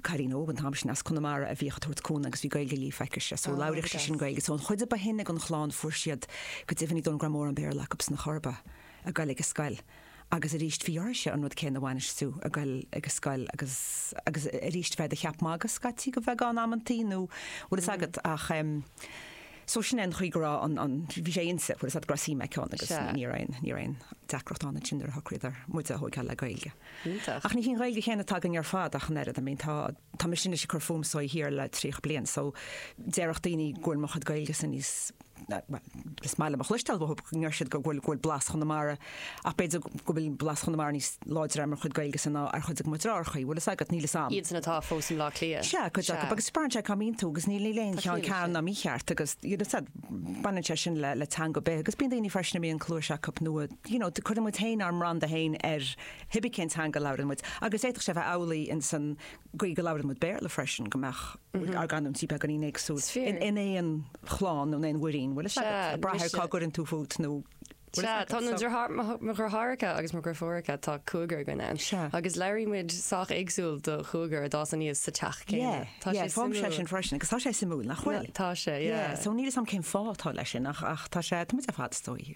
cailín óg an t-am sin as Conamara a bhíodh ag tabhairt cúnamh agus bhí Gaeilge líofa aici-se so labhraíodh sí sin Gaeilge so an chuid a ba shine den chlann fuair siad go deimhin ní dóigh go raibh mórán Béarla acu sna chorr a ba ag goil ag an scoil agus arís bhí orthu-se an rud céanna a bhainis tú ag goil ag an scoil agus agus arís bheith i do cheap magaidh scaití go bheagán amantaí nó bhfuil fhios agat ach em so sin é an chaoi go raibh an an bhí sé inti bhfuil fhios agat go raibh suim aici ann agus ní raibh aon ní raibh aon deacracht ann ansin nuair a shocraíodar muide a thógáil le Gaeilge. Iontach. Ach ní hí an Ghaeilge chéanna atá againne ar fad ach an oiread. I mean tá, tá mise anois ag cur fúm so thiar le tríocha bliain so déarfadh daoine go bhfuil mo chuid Gaeilge-sa níos, bhuel, is maith liom a chloisteáil go ndeir siad go bhfuil, go bhfuil blas Chonamara, ach b'fhéidir go bhfuil blas Chonamara níos láidre ar mo chuid Gaeilge-sa ná ar chuid de mo dhriotháireachaí, bhfuil fhios agat, níl fhios a'm. Iadsan atá fós i mBleá Cliath. Sea, cuid acu, agus braitheann sé cá mbíonn tú agus níl, níl aon cheann ceart ná mícheart agus, you know, fhios a'd, baineann sé sin le, le teanga ar bith agus bíonn daoine freisin a mbíonn cluais acu nó, you know, cuireann muid féin ár mbranda féin ar hibé cén teanga a labhrann muid, agus d'fhéadfadh sé a bheith amhlaidh in san gcaoi go labhrann muid Béarla freisin, go mbeadh ár gcanúintí beagáinín éagsúil Is fíor. in aon chlann nó in aon mhuirín, bhfuil fhios Sea, agat, ag brath ar cá mise. gcuireann tú fút nó bhfuil fhios Sea, agat, tá na so. driotháir- mo th- mo dhriotháireacha agus mo dhreifiúracha, tá cúigear againn ann, Sea. agus labhraíonn muid sách éagsúil do chúigear a d'fhás aníos sa teach céanna. Yeah, Tá yeah, sé feicimse suimiúil. sin freisin, agus tá sé suimiúil, nach bhfuil? Tá sé, yeah. Yeah, so níl 'fhios a'm cén fáth atá leis sin ach ach tá sé, tá muid ar fad, is dóigh.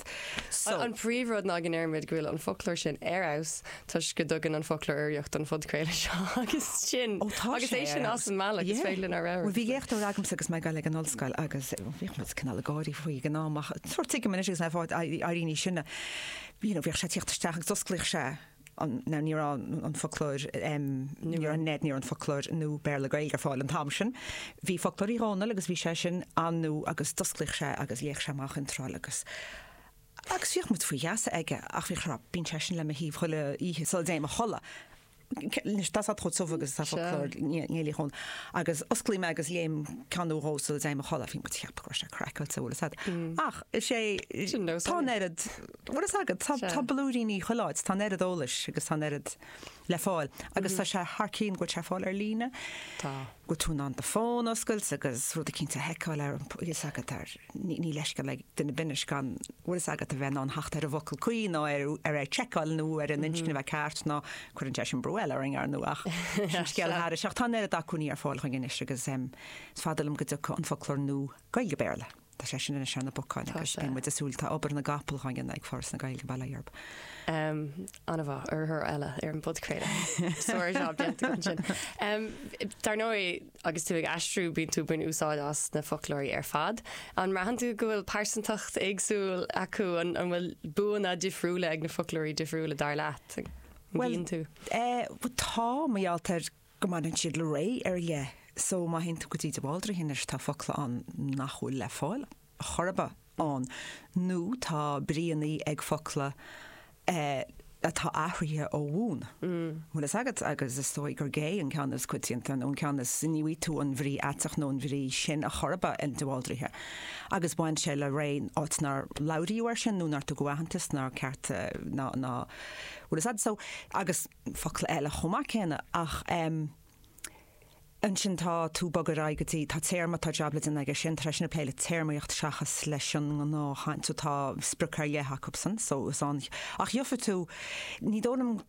So. An príomhrud ná go ndeirimid go bhfuil an foclóir sin ar fheabhas toisc go dtugann an foclóir urraíocht don phodchraoladh seo agus sin, Ó, tá agus sé é ar sin fheabhas. as an mbealach, is Yeah. féidir linn ár Bhuel, radharc. bhí léachtóir agamsa agus mé ag dul ag an ollscoil agus eh, bhíodh muid cineál ag gáirí faoi ag an am ach sórt tuigim anois agus mé ag éirí níos sine, You know, bhíodh sé ag tíocht isteach agus d'osclaíodh sé Now ní raibh an foclóir, em, ní raibh, NEID, ní raibh an foclóir nua Béarla-Gaeilge ar fáil an t-am sin. Bhí foclóir Uí Dhónaill agus bhí sé sin an-nua agus d'osclaíodh sé agus léadh sé amach iontráil agus, agus bhíodh muid faoi gheasa aige ach bhíodh rá, bíonn sé sin le mo thaobh chuile oíche sula dtéim a chodladh, anois tá fhios a'd chomh tiubh agus atá foclóir Néill Uí Dhónaill agus osclaím é agus léim ceann nó dhó sula dtéim a chodladh, bhí muid a cheapadh go raibh sé craiceáilte, bhfuil fhios a'd ach is é, tá an oiread, bhfuil fhios agat, tá, tá blúiríní chuile áit, tá an oiread eolais agus tá an oiread le fáil agus tá sé thar cinn go bhfuil sé ar fáil ar líne. Tá. Go bhfuil tú in ann do fón a oscailt agus rudaí cinnte a sheiceáil ar an, bhfuil fhios agat, ar, ní, níl leithscéal ag duine ar bith anois gan, bhfuil fhios agat, a bheith in ann theacht ar an bhfocal cuí nó ar, ar an tseiceáil nó ar an inscne a bheith ceart nó cuireann sé sin brú eile orainn ar ndóigh ach sin scéal thairis ach tá an oiread acmhainní ar fáil chugainn anois agus is fada liom go dtiocfadh an foclóir nua Gaeilge-Béarla. Tá sé sin ar an, sé ar na bacáin Tá agus sé. bíonn muid ag súil, tá obair na gcapall dhá dhéanamh ag Foras na Gaeilge bail ó Dhia orthu. Em, ana mhaith, urraitheoir eile ar an bpodchraoladh. Sár jab déanta agat ansin. Em, dar ndóigh, agus tú ag aistriú bíonn tú ag baint úsáid as na foclóirí ar fad. An mbraitheann tú go bhfuil pearsantacht éagsúil acu, an, an bhfuil buanna difriúla ag na foclóirí difriúla dar leat? An Bhuel, mbíonn tú? eh, bhuel tá, mar gheall tá, go mbaineann siad le ré ar leith so má théann tú go dtí de Bhaldraithe anois tá focla ann nach bhfuil le fáil chor ar bith ann nó tá bríonnaí ag focla atá athraithe ó bhun, bhfuil fhios agat, agus is dóigh gur gay an ceann is coitianta nó an ceann is, ní bhfaighidh tú an bhrí aiteach nó an bhrí sin ar chor ar bith in de Bhaldraithe agus bhain sé le ré, áit nár labhraíodh air sin nó nár tugadh aitheantas, nár ceart ná, bhfuil fhios agat so agus. focla eile chomh maith céanna ach em. ansin tá tú ag bogadh ar aghaidh go dtí, tá téarma, tá jab le déanamh aige sin tar éis sin ag plé le téarmaíocht seachas leis an ngnáthchaint so tá sprioc ar leith acub sin so is ann ach gheobhaidh tú ní dóigh liom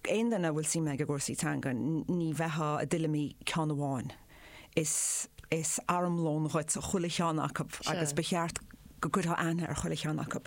aon duine a bhfuil suim aige i gcúrsaí teanga ní bheitheá i dtuilleamaí ceann amháin is is armlón dhuit chuile cheann acub agus ba cheart go gcuirtheá aithne ar chuile cheann acub.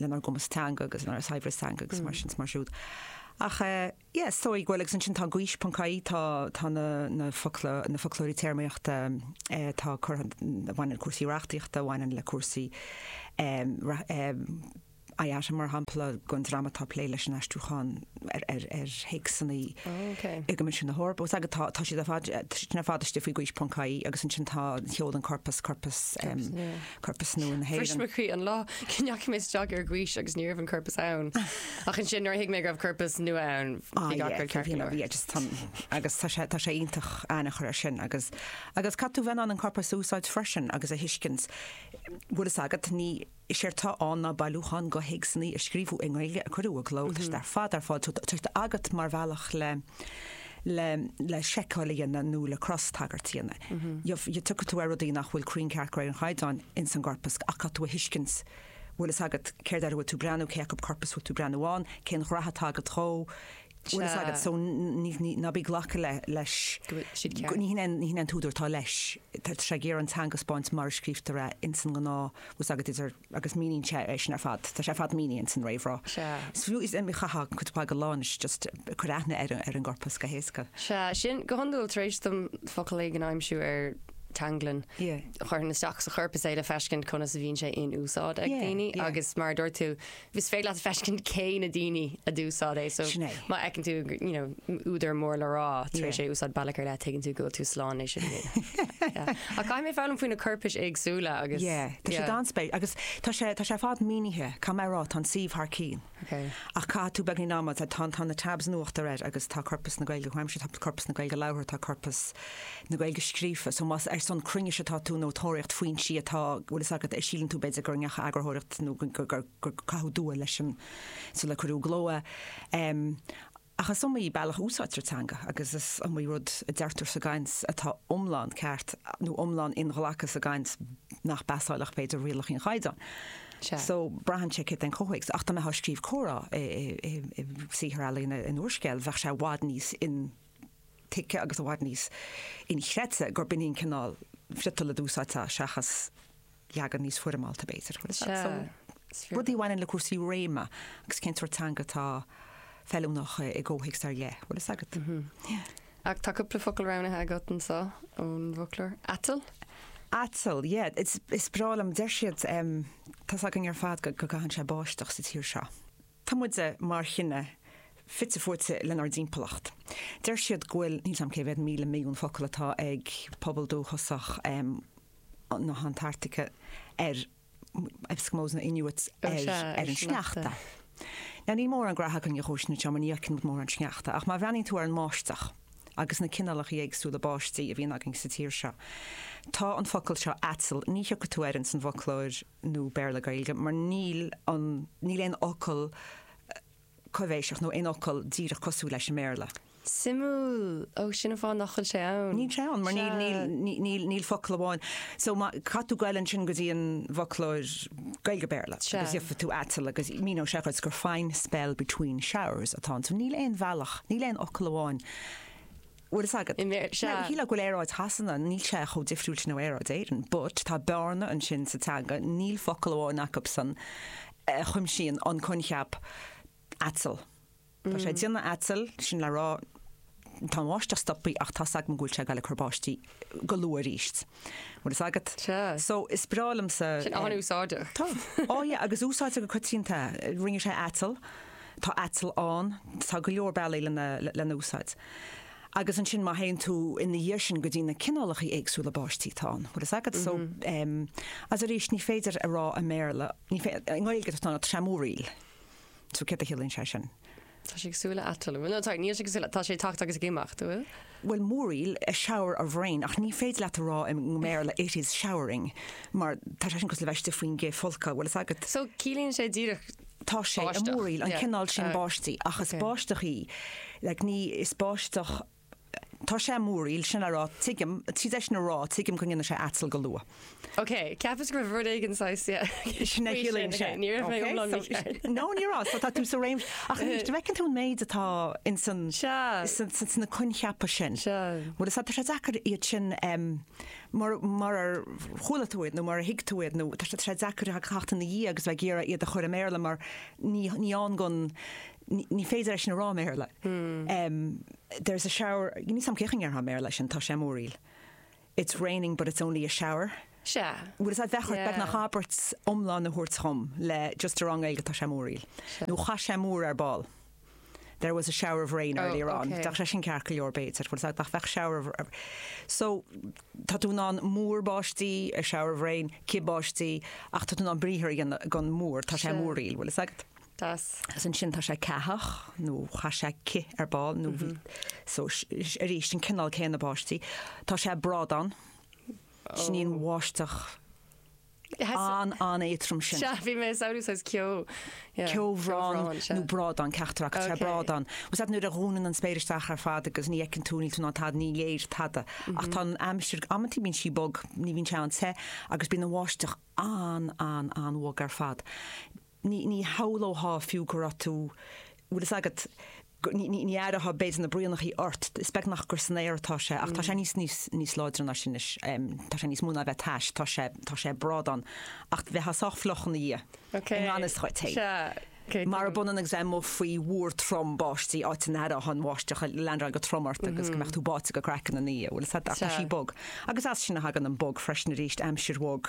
lenár gcumas teanga agus lenár saibhreas teanga agus mar sin is mar siúd. Ach yes, so ag, bhuel agus ansin tá gaois ponc ie, tá tá na na focló- na foclóirí téarmaíochta atá curtha, a bhaineann le cúrsaí reachtaíochta, a bhaineann le cúrsaí IATE mar shampla, go an dream atá ag plé leis an aistriúchán ar ar ar théacsanna i gCoimisiún na hEorpa. Fhios agat tá tá siad ar fad, siad ar fad istigh faoi gaois ponc ie agus ansin tá ar ndóigh, an corpas, corpas corpas nua na hÉireann. Bhris mo chroí an lá go ndeachaigh mé isteach ar Gaois agus ní raibh an corpas ann. Ach ansin, nuair a thuig mé go raibh corpas nua ann, bhí gach rud ceart go leor. Agus tá sé, tá sé iontach aithne a chur ar sin agus, agus caithfidh tú bheith in ann an corpas a úsáid freisin agus a thuiscint. Bhfuil fhios agat, ní, séard atá ann ná bailiúchán de théacsannaí a scríobhadh i nGaeilge, a cuireadh i gcló, tá siad ar fad ar fáil, so tá sé agat mar bhealach le, le le seiceáil a dhéanamh nó le crostagairt a dhéanamh. You've you tiocfaidh tú ar rudaí nach bhfuil cruinn ceart de réir an chaighdeáin ins an gcorpas ach caithfidh tú a thuiscint bhfuil fhios agat céard air a bhfuil tú breathnú, cé acu corpas bhfuil tú breathnú ann, cén ghraithe atá agat dhó, bhfuil fhios agat. So ní ní ná bí glacadh le leis go bhfuil siad ceart. Ní hin ní hin an t-údar atá leis. Tá sé ag iarraidh an teanga a 'spáint mar a scríobhtar é ins an ngnáth, bhfuil fhios agat, idir. agus míníonn sé é sin ar fad, tá sé ar fad mínithe san réamhrá. Sea. Is fiú, is iomaí cath againn, cuid mhaith go leor anois, just cuir aithne ar an, ar an gcorpas go héasca. Sea, sin, go hiondúil, tar éis dom focal éigin a aimsiú ar Teanglann, Yeah. chuirfinn isteach sa chorpas é le feiscint conas a bhíonn sé in úsáid ag Yeah, daoine yeah. agus mar a dúirt tú, is féidir leat feiscint cé na daoine a d'úsáid é, so Sin é. má fheiceann tú, you know, údar mór le rá tar éis é úsáid bealach ar leith, tuigeann tú go bhfuil tú slán leis sin inniu. Ach caithfidh mé foghlaim faoi na coirpis éagsúla agus. Yeah, tá sé an-spéisiúil agus tá sé tá sé ar fad mínithe, go maith sa réamhrá, tá an suíomh thar cionn ach caithfidh tú beagáinín ama, tá tá tá na tabs in uachtar agus tá corpas na Gaeilge comhaimseartha, tá corpas na Gaeilge labhartha, tá corpas na Gaeilge scríofa, so más ar son cruinnis atá tú ag tóraíocht foinsí atá bhfuil fhios agat, síleann tú b'fhéidir go ndeachaigh eagarthóireacht nó gur gur caitheadh dua leis sular cuireadh i gcló é. Ach is iomaí bealach a úsáidtear teanga agus is iomaí rud a deirtear sa gcaint atá iomlán ceart nó iomlán inghlactha sa gcaint nach bpasálfadh, b'fhéidir, rialacha an Chaighdeáin. So, braitheann sé céard é an comhthéacs. Ach dá mbeifeá ag scríobh comhrá i saothar ealaíne, in úrscéal, bheadh sé i bhfad níos intuigthe agus i bhfad níos inchreidte gurb in é an cineál friotail a d'úsáidfeá seachas, leagan níos foirmeálta, b'fhéidir. Rudaí a bhaineann le cúrsaí réime agus cén sórt teanga atá feiliúnach i gcomhthéacs ar leith, bhfuil fhios agat. Ach tá cúpla focal roghnaithe agat anseo ón bhfoclóir. Aiteall? Aiteall, yeah. Is breá liom, deir siad, tá's againn ar fad go gcaitheann sé báisteach sa tír seo. Tá muide, mar chine, fite fuaite lenár dtimpeallacht. Deir siad go bhfuil, níl 's agam cé mhéad míle milliún focal atá ag pobal dúchasach, na hAntartaice ar Eskimos nó Inuits ar an sneachta. Now níl mórán graithe againn dó sin mar ní fhaigheann muid mórán sneachta, ach má bhreathnaíonn tú ar an mbáisteach agus na cineálacha éagsúla báistí a bhíonn againn sa tír seo, tá an focal seo aiteall, ní thiocfaidh tú air ins an bhfoclóir nua Béarla-Gaeilge mar níl an, níl aon fhocal, coibhéiseach, nó aon fhocal díreach cosúil leis i mBéarla. Suimiúil! Ó, sin an fáth nach bhfuil sé ann. Níl sé ann, mar níl, níl, Sea. níl, níl, níl focal amháin. So, má, caithfidh tú goil ansin go dtí an bhfoclóir Gaeilge-Béarla Sea. agus gheobhaidh tú aiteall agus míneoidh sé dhuit gur fine spell between showers atá ann. So, níl aon bhealach, níl aon fhocal amháin. bhfuil fhios agat. Sea, shílfeá go bhfuil aeráid Shasana, níl sé chomh difriúil sin ó aeráid na hÉireann, but tá bearna ansin sa teanga, níl focal amháin acubsan a chuimsíonn an coincheap aiteall. Tá sé ag déanamh aiteall, sin le rá, tá an bháisteach stoptha ach tá 's agam go bhfuil sé ag dul ag cur báistí. go luath arís. Bhfuil fhios agat? Sea. So, is breá liomsa. Sin an-úsáideach. Tá. Á yeah, agus úsáidtear go coitianta. Rinne sé aiteall, tá aiteall ann, tá go leor bealaí lena, lena úsáid. Agus ansin má théann tú ina dhiaidh sin go dtí na cineálacha éagsúla báistí atá ann, bhfuil fhios agat? So, em, agus arís ní féidir a rá i mBéarla, ní féi-, i nGaeilge tá sé ag múraíl. So céard a chiallaíonn sé sin? Tá sé ag súil le aiteall, ab ea. No sorry, níl sé ag súil le, tá sé ag teacht agus ag imeacht, a bhfuil? Bhuel, múraíl, a shower of rain, ach ní féidir leat a rá i mBéarla it is showering, mar tá sé sin cosúil le bheith istigh faoin gcith folctha, bhfuil fhios agat. So, ciallaíonn sé díreach báisteach? Tá sé ag múraíl, an cineál sin báistí, ach is báisteach í, like, ní, is báisteach, Tá sé ag múraíl sin le rá, tuigim, tar éis sin a rá, tuigim go ndéanfaidh sé aiteall go luath. Ok, ceapas go raibh rud éigin saghas, yeah, Sin é faoi sin, sin. Ní raibh mé Ok, iomlán so- mícheart. No, ní raibh, so tá tú sa réim, ach anois, an bhfeiceann tú an méid atá ins an, Sea. san- san- sna coincheapa sin. Sea. Bhfuil fhios agat, tá sé deacair iad sin, em, mar, marar chuala tú iad nó marar thuig tú iad nó tá sé- tá sé deacair a theacht ina dhiaidh agus bheith ag iarraidh iad a chur i mBéarla mar ní, ní ann gon, Ní féidir é sin a rá i mBéarla. There's a shower, níl fhios agam cén chaoi a ndéarfá i mBéarla sin, tá sé ag múraíl. It's raining but it's only a shower. Sea. Bhfuil fhios agat, bheadh ort beagnach abairt iomlán a thabhairt dhom le just a rá i nGaeilge, tá sé ag múraíl. Nó chaith sé múr ar ball. There was a shower of rain earlier on. Bheadh sé sin ceart go leor b'fhéidir. Bhfuil fhios agat, nach bheadh shower of, so tá tú in ann múr báistí, a shower of rain, cith báistí, ach tá tú in ann briathar a dhéanamh den mhúr, tá sé ag múraíl, bhfuil fhios agat. Deas. Is ansin tá sé ceathach, nó chaith sé cith ar ball, nó bhí, so, arís, an cineál céanna báistí. Tá sé ag brádán, sin í an bháisteach an-éadtrom sin. Sea, bhí mé ag samhlú saghas ceo. Yeah. Ceobhrán nó brádán, ceachtar acu, tá sé ag brádán. Bhfuil fhios agat, nuair a dhúnann an spéir isteach ar fad agus ní fheiceann tú, níl tú in ann tada, ní léir tada. Ach tá an aimsir, amanntaí bíonn sí bog, ní bhíonn sé an-te, agus bíonn an bháisteach an-an-an-bhog ar fad. ní, ní shamhlóthá fiú go raibh tú, bhfuil fhios agat, go, ní, ní, ní aireothá b'fhéidir na braonachaí ort, is beag nach gur san aer atá sé ach tá sé níos, níos, níos láidre ná sin anois, tá sé níos mó ná a bheith tais, tá sé, tá sé ag brádán ach bheitheá sách fliuch ina dhiaidh, i ngan fhios dhuit fhéin. Marab ionann agus bheith amuigh faoi mhúr trom báistí, áit a n-aireothá an bháisteach ag leandráil go trom ort agus go mbeadh tú báite go craiceann ina dhiaidh, bhfuil fhios agat, ach tá sí bog. Agus as sin a thagann an bog freisin aríst, aimsir bhog.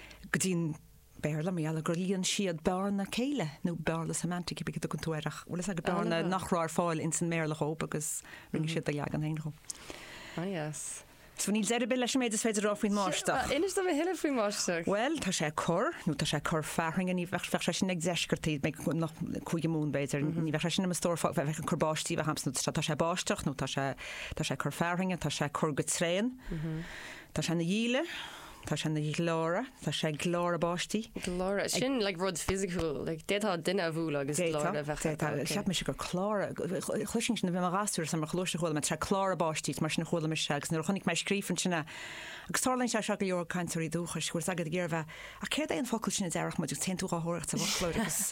go dtí an Béarla, mar gheall ar gur líon siad bearna céille, nó bearna semantic, cibé a dtugann tú air, ach bhfuil fhios agat, bearna nach raibh ar fáil ins an mBéarla dhób agus rinne siad a leagan féin dhó. Ah yes. So níl deireadh ar bith leis an méid is féidir a rá faoin mbáisteach. Tá, inis dom a thuilleadh faoin mbáisteach. Bhuel, tá sé ag cur, nó tá sé ag cur fearthainne, ní bheadh, bheadh sé sin ag deisceartaí, beidh go- nach- cúige Mumhan b'fhéidir, ní bheadh sé sin i mo stór fá- bheadh ag cur báistí a bheadh agamsa, nó tá- tá sé ag báisteach nó tá sé, tá sé ag cur fearthainne, tá sé ag cur go tréan, tá sé ina dhíle, Tá sé ina ghleáradh, tá sé ag gleáradh báistí. Gleáradh? Sin like rud fisiciúil? Like d'fhéadfá duine a bhualadh agus D'fhéadfá, gleáradh a bheith air? d'fhéadfá. Ok. Cheap mise gur cláradh, chloisinn sin, bhí mé i mo ghasúr sa mar ó chluais a chuala mé, tá sé ag cláradh báistí, is mar sin a chuala mise agus nuair a chonaic mé scríofa ansin é, agus tarlaíonn sé seo go leor cainteoirí dúchais, bhfuil fhios agat, ag iarraidh a bheith, ach céard é an focal sin a déarfadh muid agus téann tú dhá thóireacht sa bhfoclóir agus.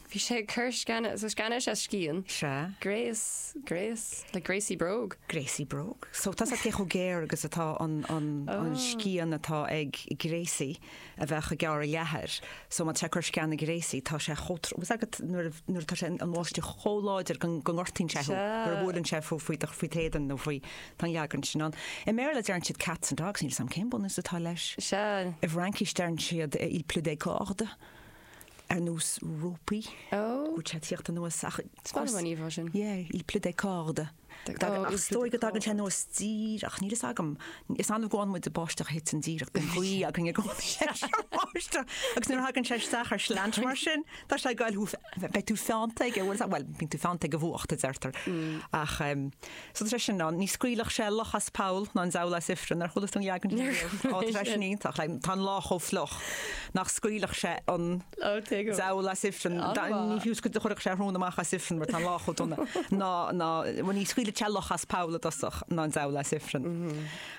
Bhí sé ag cur sceana, so sceana is ea scian. Sea. Gréas, gréas, like gréasaí bróg? Gréasaí bróg. So tá 's a'd cé chomh géar is atá an, an, an scian atá ag gréasaí a bheadh ag gearradh leathair, so má tá sé ag cur sceana gréasaí tá sé chomh trom, bhfuil 's agat nuair a, nuair atá sé, an bháisteach chomh láidir go, go ngortaíonn sé thú, nuair a bhuaileann sé thú faoi do, faoi t'éadan nó faoi, tá an leagan sin ann. I mBéarla deireann siad cats and dogs, níl 's a'm cén bunús atá leis. Sea. I bhFraincís deireann siad il pleut des cordes. ar nós rópaí, go bhfuil sé ag tíocht anuas ach tuigim an íomhá sin. Yé, il pleut des cordes. Ach is dóigh go dtagann sé anuas díreach, níl fhios agam, is annamh go bhfáann muide báisteach a thiteann díreach bíonn gaoth againne agus báisteach agus nuair a thagann sé isteach ar slant mar sin tá sé ag goil tríot, beidh tú feannta aige, bhfuil, bhuel bíonn tú feannta ag an bhfuacht a deirtear ach ehm. So tá treise ansin ann, ní scaoilfeadh sé luch as poll ná an diabhal as ifreann. Ar chuala tú an leagan sin riamh? Tá an treise sin iontach. Tá an lá chomh fliuch nach scaoilfeadh sé an diabhal as ifreann. Ní fiú go gcuirfeadh sé a shrón amach as ifreann mar tá an lá chomh dona. Ná ní scaoilfeadh sé luch as poll i dtosach ná an diabhal as ifreann.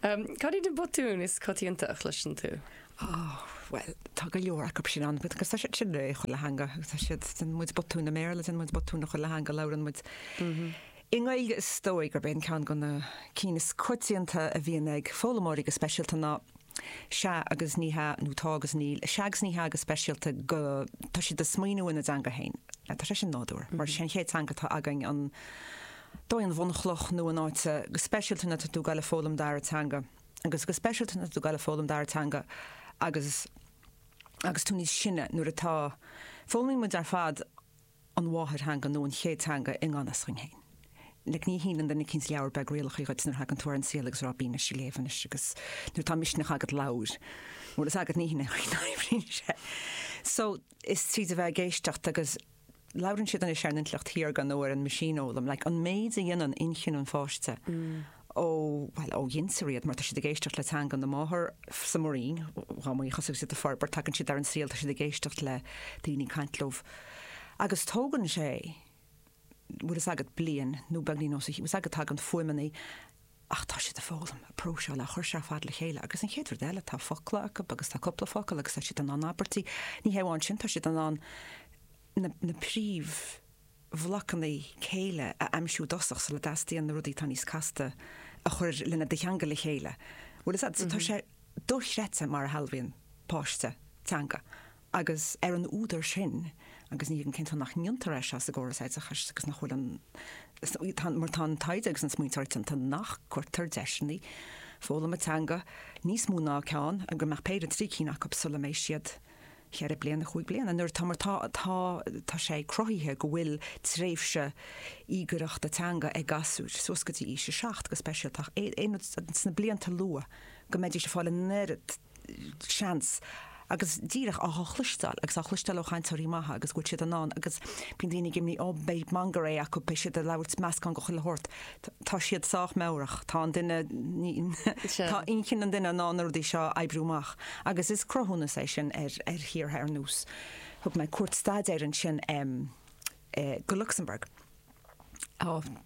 Cad iad na botúin is coitianta a chloiseann tú? Ó, bhuel, tá go leor acu sin ann, agus tá siad sin i chuile theanga, tá siad, déanann muid botúin i mBéarla, déanann muid botúin i chuile theanga a labhrann muid. I nGaeilge is dóigh gurb é ceann de na cinn is coitianta a bhíonn ag foghlaimeoirí go speisialta ná sea agus ní hea nó tá agus níl, sea agus ní hea go speisialta mar tá siad ag smaoineamh ina dteanga féin. Tá sé sin nádúrtha, mar is é an chéad teanga atá againn an t-aon bhunchloch nó in áit go speisialta nuair atá tú ag goil ag foghlaim dara teanga, agus go speisialta nuair atá tú ag goil ag foghlaim dara teanga agus agus tú níos sine, nuair atá. foghlaimíonn muid ar fad an mháthairtheanga nó an chéad teanga i ngan fhios dhuinn féin. like ní shíneann duine eicínt leabhar beag rialacha dhuit nuair a thagann tú ar an saol agus a rá 'Bí dhá léamh sin anois' agus nuair atá misneach agat labhair. bhfuil 's agat ní shíneann duine eicínt leabhar rialacha duit. so is tríd a bheith ag éisteacht agus. labhrann siad anois ar an intleacht shaorga nó ar an machine-fhoghlaim, like an méid a dhéanann inchinn an pháiste ó, bhuel, ó ghintear iad mar tá siad ag éisteacht le teanga na máthar, sa mbroinn, chomh maith agus a thosaigh siad a' forbairt, tagann siad ar an saol, tá siad ag éisteacht le daoine ag caint leof agus tógann sé, bhfuil fhios agat, bliain nó beagáinín níos mó, bhfuil fhios agat, tagann fuaimeannaí, ach tá siad ag foghlaim, ag próiseáil, ag cur seo ar fad le chéile agus an chéad rud eile, tá focla acu agus tá cúpla focal agus tá siad in ann abairtí, ní hé amháin sin, tá siad in ann na príomhbhlocanna céille a aimsiú i dtosach sula dteastaíonn na rudaí atá níos casta a chur lena dcheangal le chéile, bhfuil 's agat, so tá sé dochreidte mar a shealbhaíonn páiste teanga. agus ar an údar sin, agus ní thuigim cén fáth nach ndéantar é seo sa gcóras oideachais agus nach bhfuil an, tá, mar tá an taighde agus an smaointeoireacht déanta nach gcuirtear deiseanna foghlama teanga níos mó ná ceann, go mbeadh péire, trí cinn acu sula mbeidh siad ceithre bliana, cúig bliana, nuair atá, mar tá, tá, tá sé cruthaithe go bhfuil tréimhse íogaireachta teanga ag gasúir suas go dtí aois a seacht go speisialta ach sna blianta luath go mbeidís ag fáil an oiread seans, agus díreach á chloisteáil, agus á chloisteáil ó chainteoirí maithe agus go bhfuil siad in ann, agus bíonn daoine ag imní, oh, beidh manglam acu, beidh siad ag labhairt meascán de chuile shórt. Tá siad sách meabhrach, tá an duine, tá inchinn an duine in ann na rudaí seo a oibriú amach, agus is cruthúnas é sin ar thíortha ar nós, thug mé cuairt staidéir ansin ar, go Lucsamburg,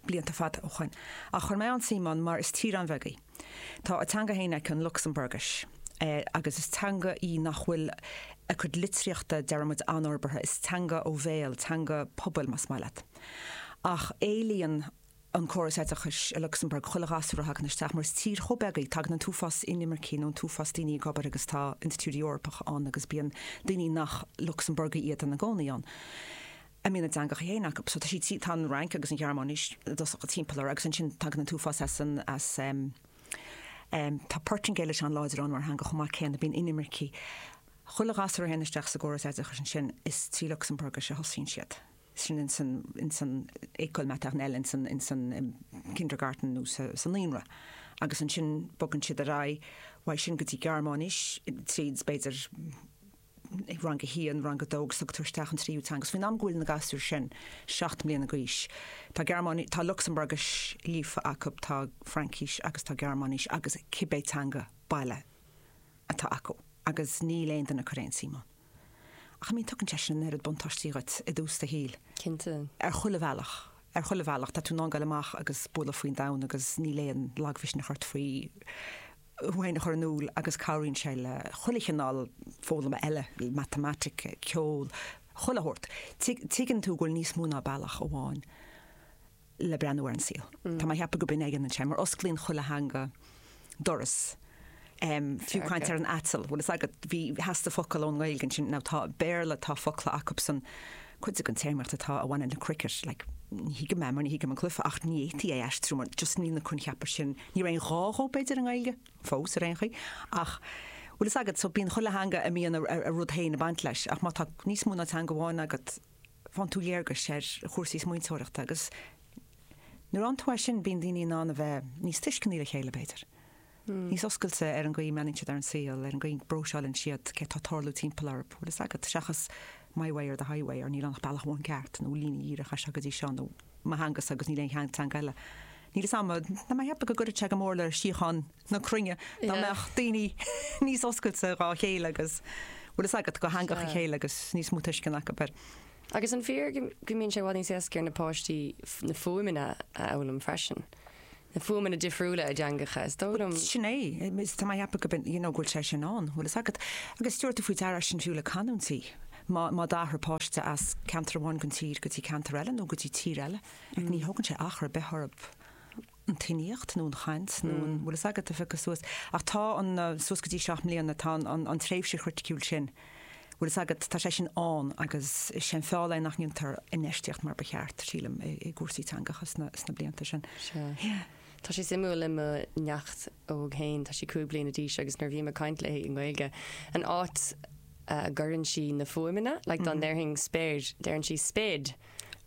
blianta fada ó shoin, ach chuir mé an-suim ann mar is tír an-bheag í. Tá a teanga fhéin aici, an Lucsamburgais, agus is teanga í nach bhfuil a cuid litríochta, deir muid, an-fhorbartha, is teanga ó bhéal, teanga pobail, más maith leat. Ach éilíonn an córas oideachais i Lucsamburg chuile ghasúr a thagann isteach, mar is tír chomh beag í, tagann an t-uafás inimircí, nó an t-uafás daoine ag obair agus tá institiúidí Eorpacha ann agus bíonn daoine nach Lucsamburgaigh iad ina gcónaí ann. a mbíonn a dteangacha féin acu. So tá siad, tá an Fhrainc agus an Ghearmáin i dtosach timpeall orthu agus ansin tagann an t-uafás as an, as ehm, ehm tá Portaingéilis an-láidir ann mar theanga chomh maith céanna, bíonn inimircigh, chuile ghasúr a théann isteach sa gcóras oideachais ansin is trí Lucsamburgais a thosaíonn siad, sin in san, in san école maternelle, in san, in san ehm kindergarten nó sa, sa naíonra agus ansin bogann siad ar aghaidh uaidh sin go dtí Gearmáinis tríd b'fhéidir, i rang a haon, rang a dó agus tugtar isteach an tríú teanga. 's faoin am go bhfuil na gasúir sin seacht mbliana d'aois, tá Gearmáinis, tá Lucsamburgais líofa acu, tá Fraincis agus tá Gearmáinis agus cibé teanga baile atá acu agus níl aon duine ag cur aon tsuim ann. Ach I mean tugann sé sin an oiread buntáistí dhuit i dtús do shaoil. Cinnte. Ar chuile bhealach. Ar chuile bhealach. Tá tú in ann dul amach agus bualadh faoin domhan agus níl aon lagmhisneach ort faoi féin a chur in iúl agus cabhraíonn sé le chuile chineál foghlama eile, matamaitic, ceol, chuile shórt. Tuigeann tú go bhfuil níos mó ná bealach amháin le breathnú ar an saol. Tá mé ag ceapadh gur b'in é a dhéanann sé, mar osclaíonn chuile theanga doras, fiú caint ar an aiteal, bhfuil fhios agat, bhí, theastaigh focal ón nGaeilge ansin, now tá, Béarla, tá focla acubsan, Cuid den téarmaíocht atá a bhaineann le cricket, like, ní thuigim é mar ní thuigim an cluife ach ní fhéadfaí é a aistriú mar just níl na coincheapa sin, níl aon ghá dhó, b'fhéidir, i nGaeilge, fós, ar aon chaoi. Ach bhfuil fhios agat, so bíonn chuile theanga a mbíonn a rud féin ag baint leis ach má tá níos mó ná teanga amháin agat faigheann tú léargas ar chúrsaí smaointeoireachta agus nuair a fhaigheann tú é sin bíonn daoine in ann a bheith níos tuisceanaí le chéile, b'fhéidir. níos oscailte ar an gcaoi a mbreathnaíonn siad ar an saol, ar an gcaoi a bpróiseáileann siad céard atá ag tarlú timpeall orthu, bhfuil fhios agat, seachas my way or the highway or níl ann ach bealach amháin ceart nó líne dhíreach as seo go dtí seo nó mo theanga's agus níl aon teanga eile. Níl fhios a'm, tá mé ag ceapadh go gcuirfeadh sé go mór le síocháin na cruinne dá mbeadh daoine níos oscailte dhá chéile agus, bhfuil fhios agat, do theangacha a chéile agus níos mó tuisceana acu ar. Agus an fíor go mbíonn sé i bhfad níos éasca ar na páistí na fuaimeanna a fhoghlaim freisin? na fuaimeanna difriúla i dteangacha, is dóigh liom. Sin é, is tá mé a' ceapadh go mbíonn, you know, go bhfuil sé sin ann, bhfuil fhios agat. Agus tabharfaidh tú faoi deara sin fiú le canúintí, má, má d'athraigh páiste as ceantar amháin den tír go dtí ceantar eile nó go dtí tír eile, like ní thógann sé achar ar bith orthub an tuiníocht nó an chaint nó an, bhfuil fhios agat, a phiocadh suas. Ach tá an, suas go dtí seacht mbliana, tá an, an, an tréimhse chriticiúil sin. bhfuil fhios agat, tá sé sin ann agus is é an feall nach ndéantar infheistíocht mar ba cheart, sílim, i gcúrsaí teangacha sna blianta sin. Sea. Tá sé suimiúil le mo neacht óg fhéin, tá sí cúig bliana d'aois agus nuair a bhím ag caint léi i nGaeilge, an áit a gcuireann sí na fuaimeanna, like dá ndéarfainn spéir, deireann sí spade.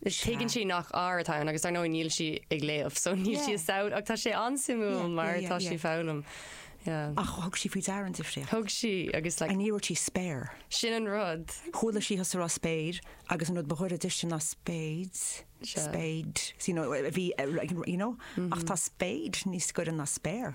Tuigeann sí nach r atá ann agus dar ndóigh níl sí ag léamh so níl sí ag samhlú ach tá sé an-suimiúil mar tá sí ag foghlaim. Ach thug sí faoi deara an difríocht. Thug sí agus like. Ní dúirt sí spare. Sin an rud. Chuala sí thusa a rá spade agus an rud ba ghaire di sin ná spades, spade, you know, a bhí like, you know, ach tá spade níos gaire ná spare.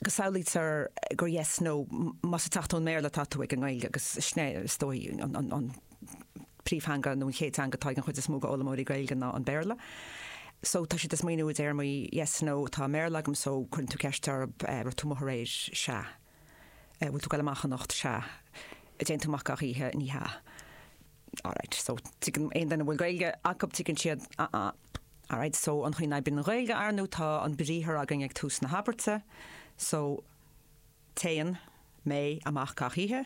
go samhlaítear gur yes, no, má's ag teacht ón mBéarla atá tú ag an nGaeilge, agus sin é is dóigh an príomhtheanga nó an chéad teanga atá ag an gcuid is mó d'fhoghlaimeoirí Gaeilge ná an Béarla. So tá siad ag smaoineamh i dtéarmaí yes, no, atá i mBéarla agam so cuireann tú ceist orthu an raibh tú amuigh aréir, sea, bhfuil tú ag goil amach anocht, sea, an dtéann tú amach gach oíche, ní hea. Alright, so tuigeann aon duine a bhfuil Gaeilge acu, tuigeann siad ah-ah. Alright, so an chaoi a n-oibríonn an Ghaeilge ar ndóigh tá an briathar againn ag tús na habairte, so téann mé amach gach oíche,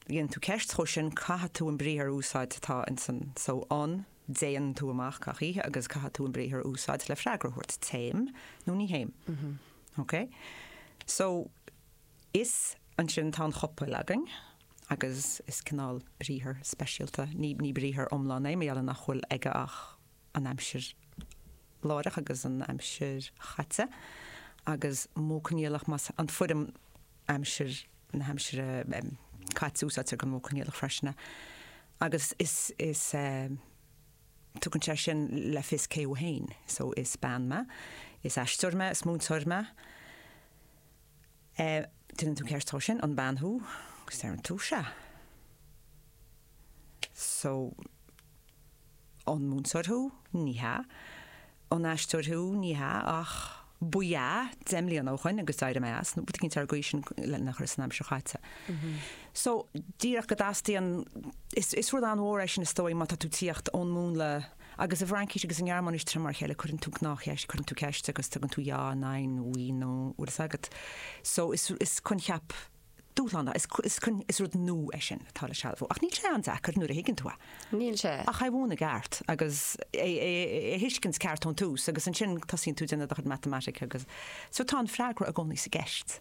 déanann tú ceist dhó sin, caithfidh tú an briathar a úsáid atá ins an, so an, dtéann tú amach gach oíche agus caithfidh tú an briathar a úsáid le freagra a thabhairt, téim nó ní théim. Ok? So ansin tá an chopail againn. agus is cineál briathar speisialta, ní briathar iomlán é, mar gheall ar nach bhfuil aige ach an aimsir láithreach agus an aimsir chaite, agus modh coinníollach, más, an foirm aimsir na haimsire caite, úsáidtear don mhodh coinníollach freisin é, agus is, is eh. tugann sé sin le fios cé thú fhéin, so is bean mé, is aisteoir mé, is múinteoir mé, Déanann tú ceart so an bean thú agus deireann tú sea so an múinteoir thú? Ní hea. An aisteoir thú? Ní hea ach ba ea deich mbliana ó shin agus d'éirigh mé as nó rud eicínt ar an gcaoi sin lena chur san aimsir chaite. So díreach go dteastaíonn, is rud an-mhór é sin is dóigh má tá tú ag tíocht ón múnla, Agus i bhFraincís agus i nGearmáinís tá siad mar a chéile cuireann tú gnáthcheist, cuireann tú ceist agus tugann tú ja, nein, oui, non, bhfuil fhios agat. So is coincheap dúshlánach, is rud nua é sin atá le sealbhú. Ach níl sé an-deacair nuair a thuigeann tú é. Níl sé. Ach é a mhúineadh i gceart agus é a thuiscint ceart ón tús agus ansin tosaíonn tú ag déanamh do chuid matamatice agus so tá an freagra i gcónaí sa gceist.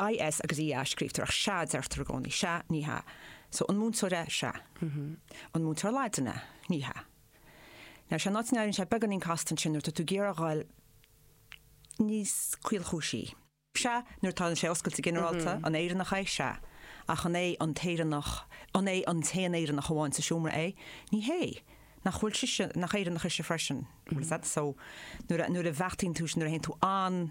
IS agus EA a scríobhtar ach sea a deirtear i gcónaí. Sea, ní hea. So, an múinteoir í? Sea. An múinteoir Laidine í? Ní hea. Now, sé an áit a n-éiríonn sé beagáinín casta ansin nuair atá tú ag iarraidh a ghoil níos caolchúisí. Sea, nuair atá an sé oscailte ginearálta, an Éireannach é? Sea. Ach an é an tÉireannach, an é an t-aon Éireannach amháin sa seomra é? Ní hé. Nach bhfuil sise, nach Éireannach ise freisin? Is that so? Nuair a, nuair a bheachtaíonn tú, nuair a théann tú an.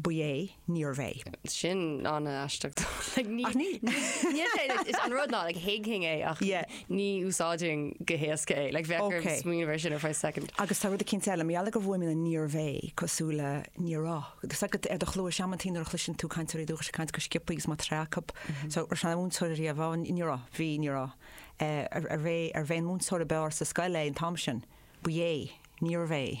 Ba é, níorbh é. Sin an-aisteach. Like, ní, níl sé, is an rud ná, like, thuigfinn é ach ní úsáidfinn go héasca é. Like, bheadh orm smaoineamh air sin ar feadh soicind. Agus tá rud eicínt eile, mar gheall go bhfuaimníonn níorbh é, cosúil le níorbh ea. ar do chluais amantaí nuair a chloiseann tú cainteoirí dúchais ag caint go sciobtha agus má tá ré acu. So, arbh ea múinteoir riamh, á, níorbh ea, bhí, níorbh ea. Ar, ar, arbh é, arbh é an múinteoir ab fhearr sa scoil é an t-am sin? Ba é, níorbh é.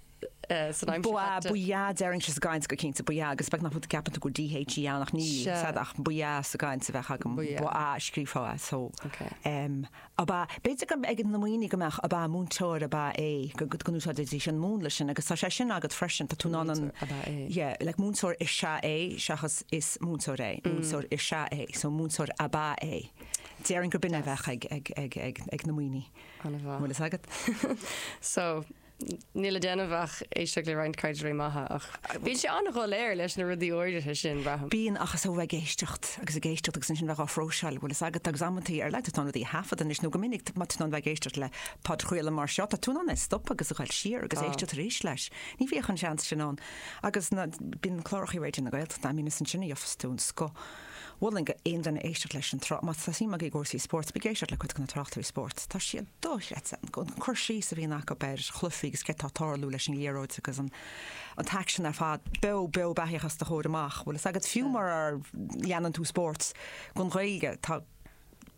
Ba ea, ba ea, déarfainn sin sa gcaint go cinnte, ba ea, agus b'fhéidir nach bhfuil, ceapann tú gur dh í ann ach níl, sead, ach ba ea sa gcaint a bheadh agam, ba ea a scríobhfá as, so em ab ea, b'fhéidir go ag na ndaoine go mbeadh, ab ea, múinteoir ab ea é, go go go n-úsáididís an múnla sin agus tá sé sin agat freisin, tá tú in ann an, yeah, like múinteoir is ea é seachas is múinteoir é, múinteoir is ea é, so múinteoir ab ea é. Déarfainn gur b'in a bheadh ag ag ag ag ag na ndaoine. An bhfuil fhios agat? So. Níl le déanamh ach éisteacht le roinnt cainteoirí maithe ach bíonn sé an-dhoiléir leis na rudaí áirithe sin, braithim. Bíonn, ach is ó bheith ag éisteacht agus ag éisteacht agus ansin bheith á phróiseáil a bhfuil fhios agat agus amantaí ar ndóigh tá tú in ann rudaí a thaifeadadh anois nó go minic má tá tú in ann bheith ag éisteacht le podchraoladh mar seo tá tú in ann é stopadh agus a ghoil siar agus éisteacht arís leis. Ní bhíodh an seans sin ann agus bíonn cláracha Raidió na Gaeltachta ann, bíonn, is ansin a gheobhas tú an scoth. mholfainn d'aon duine éisteacht leis an tsraith. Má tá suim agaibh i gcúrsaí spóirt, bígí ag éisteacht le cuid de na tráchtairí spóirt, tá siad dochreidte, an cur síos a bhíonn acu ar chluichí agus céard tá ag tarlú leis an liathróid agus an t-aicsean ar fad, beo beo beathaíoch os do chomhair amach. Bhfuil fhios agat, fiú mura leanann tú spóirt, don Ghaeilge, tá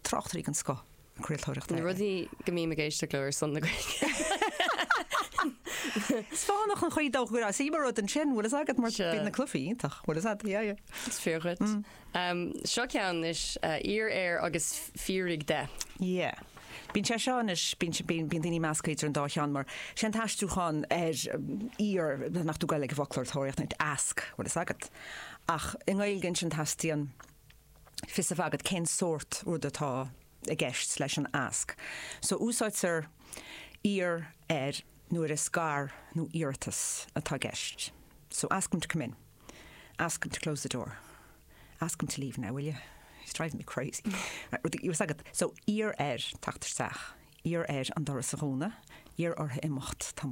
tráchtairí den scoth. craoltóireachta eile. Na rudaí go mbím ag éisteacht leo ar son na Gaeilge. Is fánach an chaoi dócha go raibh. Sea, mar rud ansin, bhfuil fhios agat, mar Sea. bhí na clufaí iontach, bhfuil 'fhios a'd, yeah, yeah. Is fíor dhuit. Seo ceann anois, Iarr air agus fiafraigh de. Yeah. Bíonn sé seo anois, bíonn si- bíonn bíonn daoine ag meascadh idir an dá cheann mar sé an t-aistriúchán ar iarr, má théann tú chuig an bhfoclóir ag tóraíocht, ask, bhfuil 'fhios agat. Ach i nGaeilge ansin teastaíonn fios a bheith agat cén sórt rud atá i gceist leis an ask. So úsáidtear iarr air nuair is gar nó iarratas atá i gceist. So ask him to come in. Ask him to close the door. Ask him to leave now, will you? He's driving me crazy. Bhfuil a fhios agat. So iarr air teacht isteach. Iarr air an doras a dhúnadh. Iarr orthu imeacht. Tá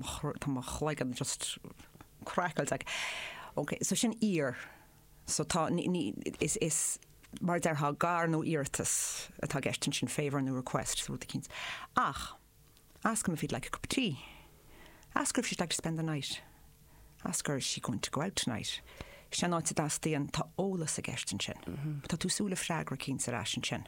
mo chloigeann just craiceailte agam. Ok, so sin iarr. So tá, ní, ní, is, is, mar a déarfá, gar nó iarratas atá i gceist ansin, favour nó request, rud eicínt. Ach, ask him if he'd like a cup of tea. Ask her if she'd like to spend the night. Ask her is she going to go out tonight. Sin an áit a dteastaíonn, tá eolas i gceist ansin. Tá tú ag súil le freagra eicínt ar ais ansin.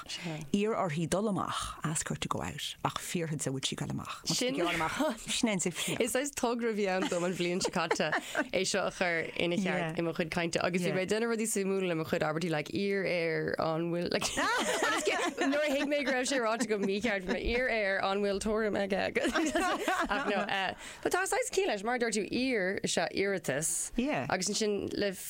Iarr uirthi dul amach, ask her to go out, ach fiafraigh di an bhfuil sí ag dul amach. Má tá sí ag dul amach, sin an suíomh céanna. Is saghas togra a bhí ann dom an bhliain seo caite é seo a chur ina cheart i mo chuid cainte agus bhí mé ag déanamh rudaí suimiúla le mo chuid abairtí like iarr air an bhfuil like nuair a thuig mé go raibh sé ráite go mícheart bhí mé, iarr air an bhfuil tuairim aige ach no. But tá saghas cinn leis mar a dúirt tú iarr is ea iarratas agus ansin le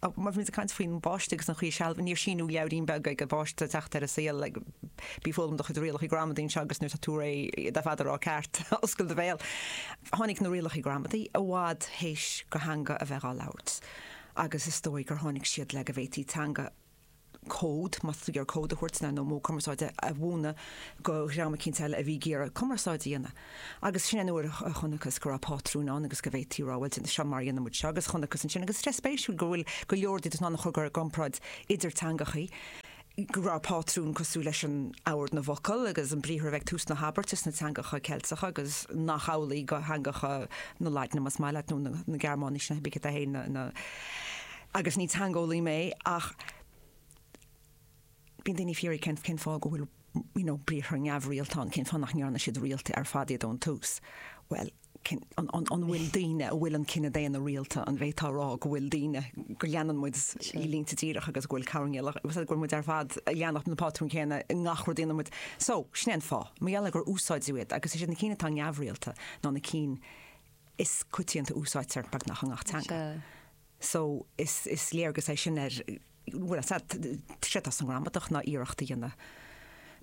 Ó, má bhímid ag caint faoin bpáiste agus an chaoi a sealbh, níor síneadh leabhairín beag ag an bpáiste ag teacht ar an saol, like bí ag foghlaim do chuid rialacha gramadaí anseo agus nuair atá tú réidh le iad ar fad a rá ceart, oscail do bhéal. Tháinig na rialacha gramadaí i bhfad théis don teanga a bheith á labhairt agus is dóigh gur tháinig siad le go bhféadfaí teanga, cód, mar a déarfá, cód a thabhairt nó modh cumarsáide a mhúineadh go dhream eicínt eile a bhí ag iarraidh cumarsáid a dhéanamh. Agus sin an uair a chonacthas go raibh pátrún ann agus go bhféadfaí rá, bhuel, seo mar a dhéanann muid seo agus chonacthas ansin, agus is rud spéisiúil go bhfuil go leor de, den chur i gcomparáid idir teangachaí, go raibh pátrún cosúil leis an ord na bhfocal agus an briathar a bheith ag tús na habairte sna teangacha Ceilteacha agus nach amhlaidh go theangacha na Laidne, más maith leat, nó na Gearmáinise, na, hab ich daheim, na. agus ní teangeolaí mé ach bíonn daoine ag fiafraí cén cén fáth go bhfuil you know briathra neamhrialta ann, cén fáth nach ndearna siad rialta ar fad iad ón tús? Bhuel, cén, an, an, an bhfuil daoine a bhfuil an cine daonna rialta, an bhféadfá a rá go bhfuil daoine, go leanann muid línte díreach agus go bhfuil chaon duine, agus go bhfuil muid ar fad ag leanacht an pátrún céanna i ngach rud a dhéanann muid. So, sin é an fáth, mar gheall ar gur úsáideadh iad agus is iad na cinn atá neamhrialta ná na cinn is coitianta a úsáidtear beagnach i ngach teanga. So, is léargas é sin ar, bhuel, séard atá sa ngramadach ná iarracht a dhéanamh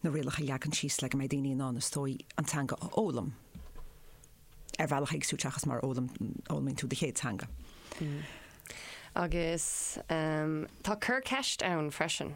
na rialacha a leagan síos le go mbeidh daoine in ann, is dóigh, an teanga a fhoghlaim ar bhealach éagsúil seachas mar a fhoghlaimíonn tú do chéad teanga. Agus tá cur ceist ann freisin.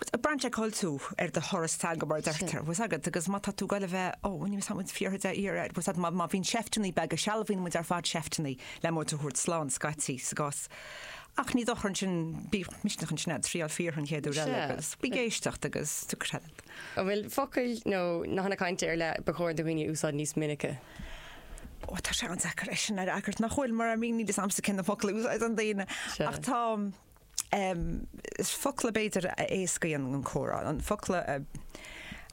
Bhuel braitheann sé cá bhfuil tú ar do thuras teanga mar a deirtear. 'Bhfuil 'fhios agat agus má tá tú ag dul a bheith, ó, ní bheadh muid buartha de shíor ar, 'bhfuil 'fhios a't má bhíonn seifteanna beaga, sealbhaíonn muid ar fad seifteanna le muid a thabhairt slán scaití sa gcás. Ach ní dochar ansin, bíodh misneach ansin agat thriáil fíortha an chéad uair eile agus bí ag éisteacht agus to credit. An bhfuil focail nó nathanna cainte ar leith ba chóir do dhaoine a úsáid níos minice? Ó, tá sé an-deacair é sin a fhreagairt, nach bhfuil? Mar I mean níl 'fhios a'msa cé na focail a úsáideann daoine ach tá, focla b'fhéidir a éascaíonn an comhrá, focla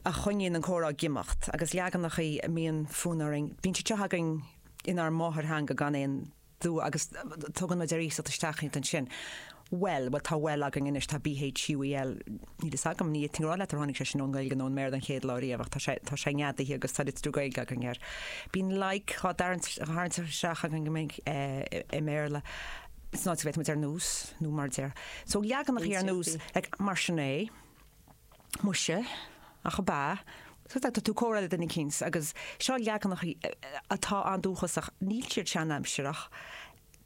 a choinníonn an comhrá ag imeacht agus leaganachaí a mbíonn fonn orainn, bíonn siad seo againn inár máthairtheanga gan aon dua agus tugann muid ar iasacht isteach iad ansin, bhuel, bhuel tá bhuel againn anois, tá b, h, u, e, l, níl fhios agam, ní fhéadfainn a rá leat ar tháinig sé sin ón nGaeilge nó ón mBéarla an chéad lá riamh ach tá sé, tá sé neadaithe agus tá litriú Gaeilge againn air. Bíonn like dhá dtarraingt, dhá tharraingt isteach againn go minic i mBéarla. Is áit a bhféadfadh muid ar nós, nó mar a deir, so leaganacha ar nós like, mar sin é, muise, ach ab ea, so tá tú ag comhrá le duine eicínt agus seo leaganacha atá an-dúchasach, níl siad seanaimsireach,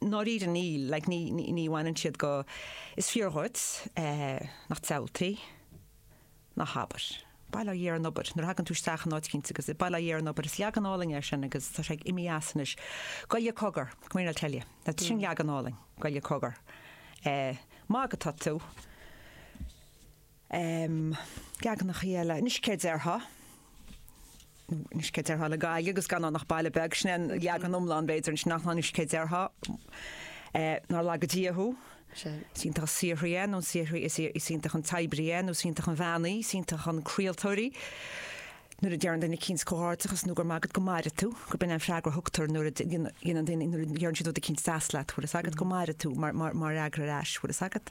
ndáiríre níl, like ní, ní, ní bhaineann siad go, is fíor dhuit, eh, nach diabhaltaí. Ná habair. Bail ó Dhia ar an obair. Nuair a thagann tú isteach in áit eicínt agus bail ó Dhia ar an obair, is leagan álainn é sin agus tá sé ag imeacht as anois. Goile cogar, come here 'til I tell you. Now sin leagan álainn, goile cogar. Eh, ag magadh atá tú. Em, leaganachaí eile, anois céard déarfá? Anois céard déarfá le Gaillimh agus gan ann ach baile beag, sin é an leagan iomlán, b'fhéidir, ansin ach anois céard déarfá. Nár laga Dia thú. Is iontach an saothraí é, nó an saothraí, is iontach an t-oibrí é, nó is iontach an bhean í, is iontach an craoltóir í. Nuair a deireann duine eicínt comhghairdeachas nó go raibh maith agat go maire tú, gurb in é an freagra a thugtar nuair a dhéanann daoine, nuair a dheireann siad rud eicínt deas leat, bhfuil fhios agat, go maire tú, mar fhreagra ar ais, bhfuil fhios agat.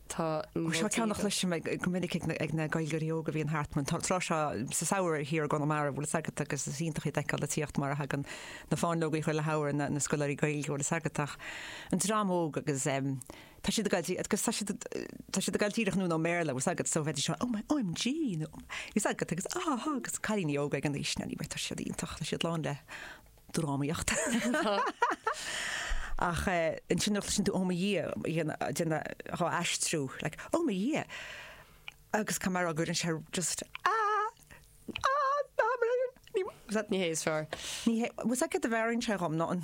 Tá, seo ceann a chloisim go minic ag na Gaeilgeoirí óga a bhíonn thart an tráth seo sa samhradh thiar i gConamara, bhfuil 'fhios agat, agus is iontach iad a fheiceáil ag tíocht mar a thagann na fáinleogaí chuile shamhradh, na scoláirí Gaeilge, bhfuil 'fhios agat, ach an dream óg agus tá siad ag goil díreach, agus tá siad, tá siad ag goil díreach anonn ón mBéarla, bhfuil 'fhios agat, so bheidís seo, 'oh my, omg, you know, 'fhios agat, agus áhá, agus cailíní óga ag an aois sin anyway, tá siad iontach, tá siad lán le. drámaíocht. Ach ansin nuair a chloiseann tú Oh my Dhia, dhéan dhéan dhá aistriú, like Oh my Dhia! Agus cá mear á gcuireann sé just ah! ah! ná maraon! Ní hé is fearr. Ní hé, 'bhfuil 'fhios a't get the bhfearainn sé dhom ná an.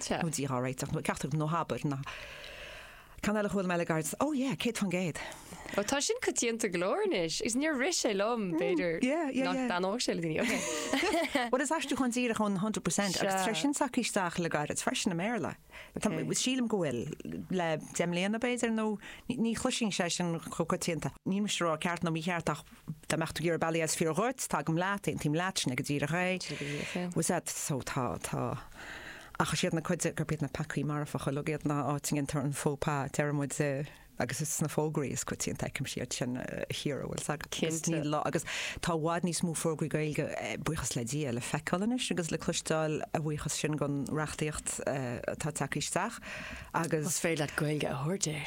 Sea. Dia dhá réiteach, nó ceachtar ná habair é. Ceann eile a chuala mé le gairid, Oh yeah, céad faoin gcéad. Ó, tá sin coitianta go leor anois, agus níor rith sé liom, b'fhéidir Yeah, yeah, nach yeah. dtaitneodh sé le daoine, ok. Bhuel, is aistriúchán díreach ón hundred percent, agus Sea. tá sé sin tagtha isteach le gairid freisin i mBéarla. Tá- Ok. Sílim go bhfuil, le deich mbliana, b'fhéidir, nó ní- ní chloisfinnse é sin chomh coitianta. Níl mise ag rá ceart nó mícheart, ach dá mbeadh tú ag iarraidh bealaí, is fíor dhuit, tagaim leat, aontaím leat, sin é go díreach é. Sin é go díreach é. Bhuel, sea, so tá, tá. Ach is iad na cuid, gurb iad na peacaí marfacha uilig iad ná áit a ndéantar an faux pas, a deir muid, agus is sna fógraí is coitianta a fheicimse iad sin, a Chiara, an bhfuil 's agat. Cinnte. Agus níl lá, agus tá i bhfad níos mó fógraí Gaeilge, buíochas le Dia, le feiceáil anois agus le cloisteáil, a bhuíochas sin don reachtaíocht atá ag teacht isteach agus. Más féidir leat Gaeilge a thabhairt air.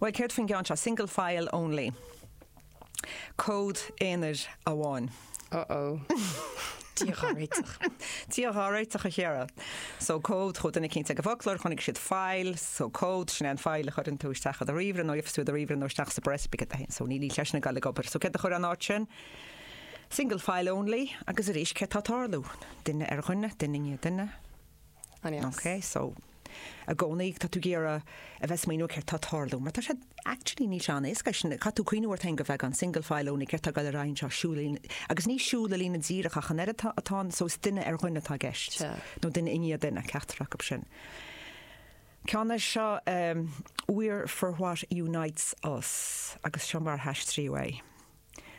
Bhuel, céard faoin gceann seo? Single file only. Comhad aonair amháin. Oh oh. Dia dhá réiteach. Dia dhá réiteach, a Chiara. So comhad, chuaigh duine eicínt ag an bhfoclóir, chonaic siad file, so comhad, sin é an file a chuireann tú isteach i do ríomhaire nó a dheifeas tú i do ríomhaire nó isteach sa bprios bigit a haon. So níl sé sin ag goil ag obair. So céard a chuir in áit sin? Single file only. Agus arís, céard atá ag tarlú? Duine ar dhuine, duine i ndiaidh duine. An-deas. Ok, so i gcónaí tá tú ag iarraidh a bheith ag smaoineamh céard tá ag tarlú, mar tá sé actually níl sé chomh héasca sin, caithfidh tú cuimhniú ort féin go bheith an single file only céard tá ag dul ar aghaidh anseo, siúl i líne, agus ní siúl i líne díreach ach an oiread, tá, tá an, so is duine ar dhuine atá i gceist, nó duine i ndiaidh duine, ceachtar acu sin. Ceann é seo, ehm, We're for what unites us, agus seo mar a haistríodh é.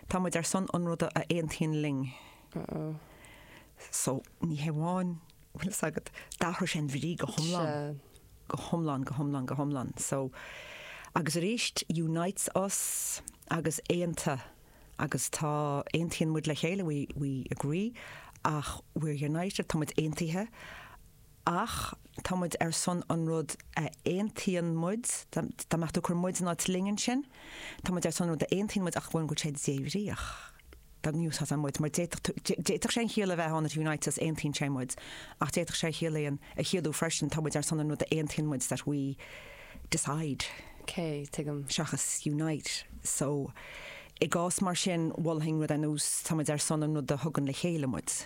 Tá muid ar son an ruda a aontaíonn linn. Uh oh. So, ní hé amháin, bhfuil fhios agat, d'athraigh sé an bhrí go hiomlán. Sea. Go hiomlán, go hiomlán, go hiomlán. So, agus arís, unites us agus aonta agus tá, aontaíonn muid le chéile, we, we agree, ach we're united, tá muid aontaithe, Ach tá muid ar son an rud a aontaíonn muid, dá mbeadh tú ag cur muid in áit linn ansin, tá muid ar son an rud a aontaíonn muid ach go bhfuil sé débhríoch. Dá n-úsáidfeá muid, mar d'fhéadfadh sé an chiall a bheith ann it unites us aontaíonn sé muid, ach d'fhéadfadh sé a chiallaíonn a chiallú freisin, tá muid ar son an rud a aontaíonn muid that we decide. K, tuigim. seachas unite. So, i gcás mar sin, mholfainn rud ar nós tá muid ar son an rud a thugann le chéile muid.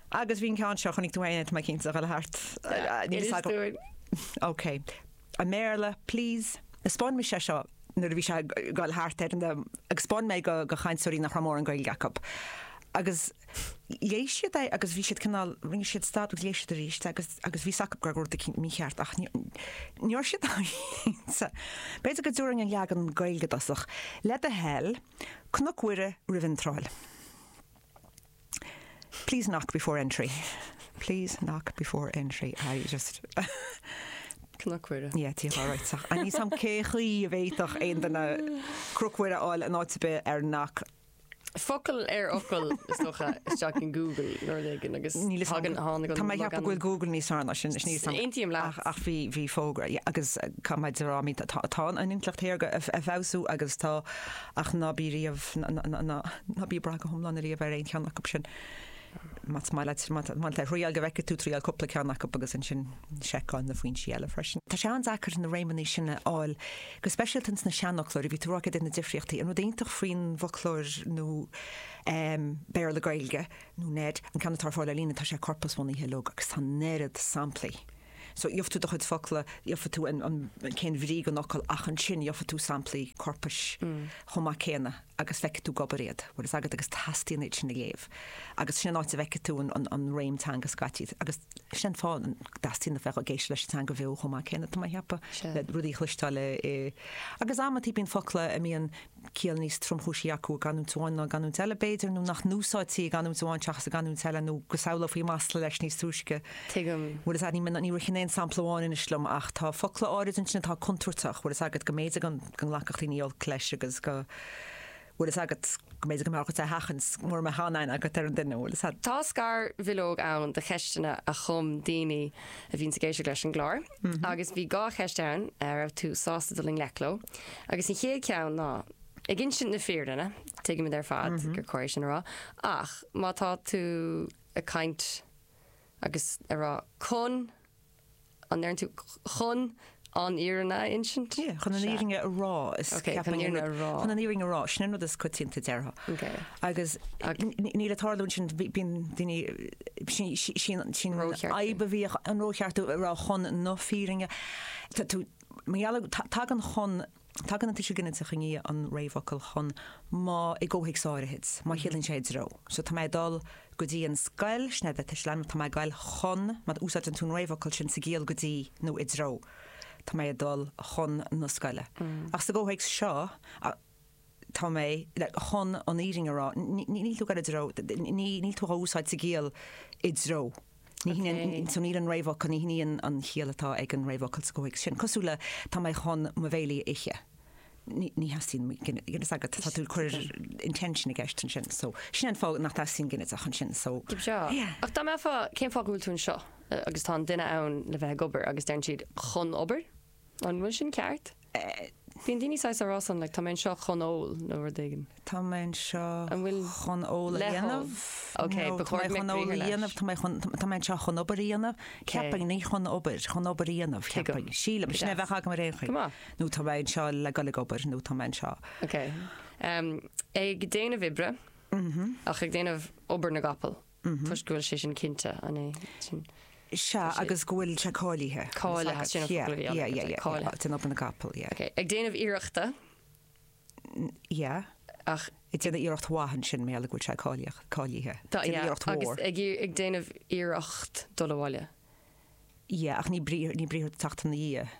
Agus bhí an ceann seo, chonaic tú féin é, tá mé cinnte, ag dhul thart. Níl fhios agam. Inis dúinn. OK. I mBéarla, please. Spáin mise é seo nuair a bhí sé ag dhul thart ar an am, agus spáin mé é do chainteoirí nach raibh mórán Gaeilge acu. Agus léigh siad é agus bhí siad cineál, rinne siad stad agus léigh siad arís agus agus bhí fhios acu go raibh rud eicínt mícheart ach ní ní raibh siad cinnte. B'fhéidir go dtabharfainn an leagan Gaeilge i dtosach. Le do thoil, Cnoc Mhuire roimh iontráil. Please knock before entry please knock before entry I just Cnoc Mhuire. Yeah Tír Chláir right so I need some cén chaoi a bhféadfadh aon duine Cnoc Mhuire a fháil in áit ar bith ar knock Focal ar fhocal, is dócha, isteach in Google nuair éigin agus Níl fhios agam, tháinig an Tá mé ag ceapadh go bhfuil Google níos fearr ná sin, bhfuil fhios agat. Aontaím leat. Ach, ach bhí, bhí fógra, yeah, agus caithfidh mé a rá, I mean, tá, tá an intleacht shaorga ag, ag feabhsú agus tá Ach ná bí riamh, ná bí ag brath go hiomlán ariamh ar aon cheann acu sin. Más maith leat, má tá tú ag triáil go bhfeicfidh tú, triáil cúpla ceann acu agus ansin seiceáil na foinsí eile freisin. Tá sé an-deacair na réimeanna sin a fháil, go speisialta ins na seanfhoclóirí, a bhí tú a rá céard iad na difríochtaí. An rud iontach faoin bhfoclóir nua Béarla-Gaeilge, nó NEID, an ceann atá ar fáil ar líne, tá sé corpasbhunaithe, leoga, agus tá an oiread samplaí. So, gheobhadh tú do chuid focla, gheobhadh tú an, an, cén bhrí don fhocal ach ansin gheobhadh tú samplaí corpais chomh maith céanna agus feicfidh tú ag obair iad, bhfuil fhios agat agus teastaíonn uait sin a léamh agus sin an áit a bhfeicfidh tú an, an, an réim teanga scaití agus sin an fáth a dteastaíonn a bheith ag éisteacht leis an teanga bheo chomh maith céanna tá mé a cheapadh, le rudaí a chloisteáil i, i. Agus amantaí bíonn focla a mbíonn, ciall níos tromchúisí acu i gcanúint amháin ná i gcanúint eile, b'fhéidir, nó nach n-úsáidtí i gcanúint amháin seachas i gcanúint eile, nó go samhlófaí masla leis níos túisce. Tuigim. Bhfuil fhios a't, ní ritheann aon sampla amháin anois liom, ach tá focla áirid ansin atá contúirteach, bhfuil fhios agat, go mb'fhéidir go nglacfadh daoine olc leis agus go, bhfuil fhios agat, go mb'fhéidir go mbeadh ort é a sheachaint mura mbeadh aon aithne agat ar an duine, bhfuil fhios a't. Tá scarbhileog ann do cheisteanna a chum daoine a bhíonns ag éisteacht leis an gclár. agus bhí dhá cheist ann a raibh tú sásta dul i ngleic leo, agus an chéad cheann ná, ag insint na fírinne, tuigimid ar fad gur chóir é sin a rá, ach má tá tú ag caint agus ag rá chun, an ndeireann tú chun an fhírinne a insint? Sea, chun an fhírinne a rá, is Ok, chun an fhírinne a rá. chun an fhírinne a rá, sin an rud is coitianta a déarfá. Ok. Agus níl ag tarlú ansin, bíonn daoine Sin an fhadhb a bhíodh, an rócheartú a raibh chun na fírinne. Tagann chun, tagann an tuiseal ginideach i ndiaidh an réamhfhocal chun má i gcomhthéacs áirithe, má chiallaíonn sé i dtreo. So, tá mé ag dul go dtí an scoil, sin é do thuiseal ainmneach, tá mé ag goil chun, má úsáideann tú an réamhfhocal sin sa gciall go dtí nó i dtreo, tá mé ag dul chun na scoile. Ach sa gcomhthéacs seo, tá mé, chun an fhírinne a rá, níl tú ag goil i dtreo, níl tú á úsáid sa gciall i dtreo, ní hionann, so níl an réamhfhocal, ní hionann an chiall atá ag an réamhfhocal sa gcomhthéacs sin, cosúil le tá mé chun mo bhéile a ithe, ní theastaíonn ginideach agat, tá tú ag cur intention i gceist ansin, so sin an fáth nach dteastaíonn ginideach ansin, so yeah. Ach dá mbeifeá, cén fáth go bhfuil tú anseo agus tá an duine ann le bheith ag obair agus deireann siad chun obair? An bhfuil sin ceart? Bíonn daoine saghas ag rá like, tá mé anseo chun ól nó rud éigin. Tá mé anseo chun ól a dhéanamh. Ok, ba chóir go mbeadh briathar leis. Tá mé chun ól a dhéanamh, tá mé anseo chun obair a dhéanamh, ceapainn, ní chun obair, chun obair a dhéanamh, ceapainn, sílim, sin é a bheadh agam ar aon chaoi. Nó tá mé anseo le dul ag obair nó tá mé anseo. Ok. Ag déanamh oibre ach ag déanamh obair na gcapall. toisc go bhfuil sé sin cinnte, an é sin? Sea, agus go bhfuil sé cáilithe. Cáilithe, sin an focal a bhí ann, yeah, yeah, cáilithe. Déanamh obair na gcapall, yeah. Ok, ag déanamh iarrachta. Yeah, ach. ag déanamh iarracht mhaith ansin, mar gheall go bhfuil sé cáilíoch, cáilithe. Tá, yeah, agus. Déanamh iarracht mhór. ag déanamh iarracht dul abhaile. Yeah, ach ní brí, ní briathar atá ag teacht ina dhiaidh.